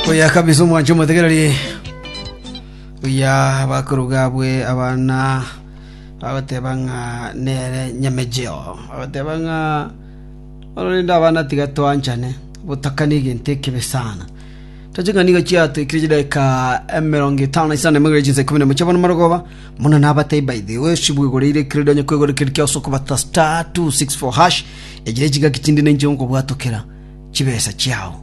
oya kabisa omwancho omotegereri oya bakoruga bwe abana bagoteba ng'a nere nyamejeo bagoteba ng'a ororende abana tiga twanchane botakani egento ekebe sana tochika nigo chiatwikire chidaka emerongo etano na isano emegere chinsa ikumi na mocha bono marogoba mono nabatei by the way sibwegoreire ekero donye kwegora ekero kiasoka bata star 264 hash ejire chigaki chinde ninche nkobwatokera chibesa chiao.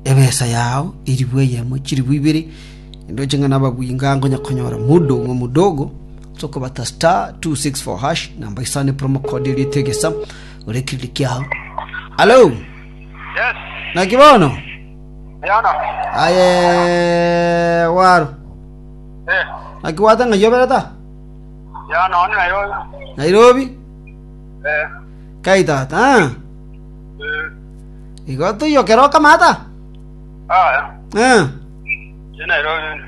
Ebesa yao eribu eyemo chiribu ibere, naende oche ng'a nababwinga nkonya konyora mudung'o mudogo ase okobata star 264 hash namba isane promo code eria etegesa ore kiriri kiao alo Yes, naki bono Diana. aye waro Eh, naki gwata ng'a yobereta Diana, one nayo. nairobi Eh, kai tata ah? Igo toiyokere okamata? Aya, Eh. ye Nairobi.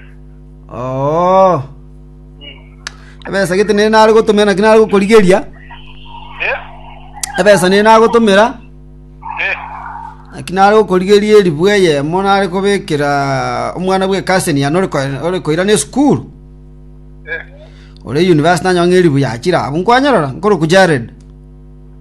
Oo. Ebesa gete nere nare gotomera naki nare gokorigeria. Eh, Ebesa nere nagotomera eh, naki nare gokorigeria eribu eyemo nare kobekera omwana bwe cousin yane ore ko- ore koirana esukuru. eh. Ore university nanyang'a eribu yachire abu nkwanyerora nkoroku Jared.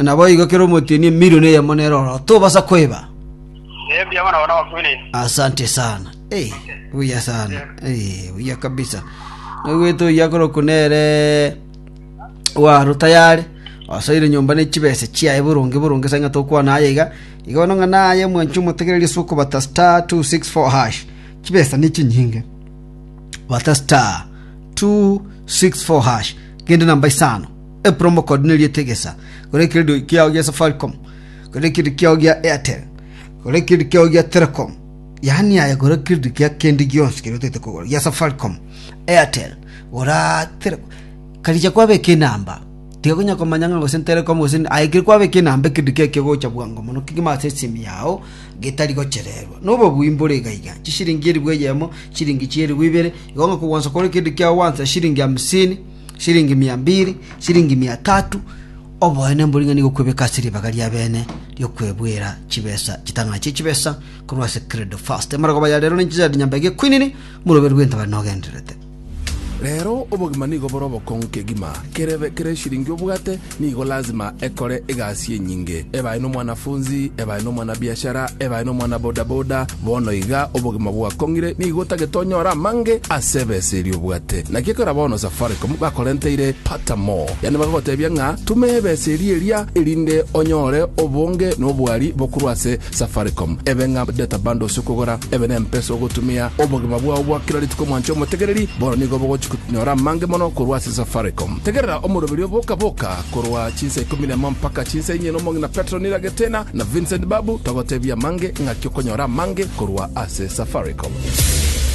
Naboigo kera omotienyi emilion eyemo nere oro tobasa koeba. Asante sana. Hey, buya sana. Hey, buya kabisa. Nagwete oya koroku nere waro tayari. Asoire nyomba ne chibese chiaye burungi burungi sanga tokwana aye iga. Iga nonga naye mwanchu mutegererie suko bata star 264 hash. Chibesa ni chinyinge. Bata star 264 hash. Kende namba isano, e promo code neri etegesa, kore ekeredo kiao gia Safaricom, kore ekeredo kiao gia Airtel, kore ekeredo kiao gia Telecom, yaani aya kore ekeredo kia kende gionsi keria otagete kogora gia Safaricom, Airtel, gora Tele karigia kwabeka enamba tiga konya komanya ng'a gose Telecom gose nini, aye ekero kwabeka enamba ekeredo kiao kegocha bwango mono kegima ase esimi yao. getari gochererwa, na obobuya imboro igaiga, chisiringi elifu eyemo, chisiringi chielifu ibere, igo ng'a kogwansa kore kende kiagwansa chisiringi hamsini, chisiringi mia mbiri, chisiringi mia tatu, oboene mbori ng'a nigo okwebeka ase ribaga ria bene ri'okwebwera chibesa chitang'ana chie chibesa korwa ase Credo First. Amarogo ba ya rero ninchisaidi nyambaiga ekwenene, omoroberu bw'entabare nogendererete. Rero obogima nigo bore obokong'u kegima. Kerebe kera eshiringi obwate nigo lazima ekore egasi enyinge. Ebae nomwanafunzi, ebae nomwanabiashara, ebae nomwana bodaboda, bono iga obogima bwakong'ire nigo otagete onyore amange ase ebesa eria obwate. Naki ekero bono Safaricom bakorenteire Pata More, yaani bakagotebia ng'a tuma ebesa eria eria erinde onyore obonge nobwari bokorwa ase Safaricom. Ebe ng'a data bundles okogora ebe nempesa ogotumia. Obogima bwao bwa kera rituko mwanche omotegereri, bono nigo bogochi konyora amange mono korwa ase Safaricom. Tegerera omoroberi o Boka Boka korwa chinsa ikomi na emo mpaka chinsa inye n'omong'ina Petro Niragetena na Vincent Babu togotebia amange ng'aki okonyora amange korwa ase Safaricom.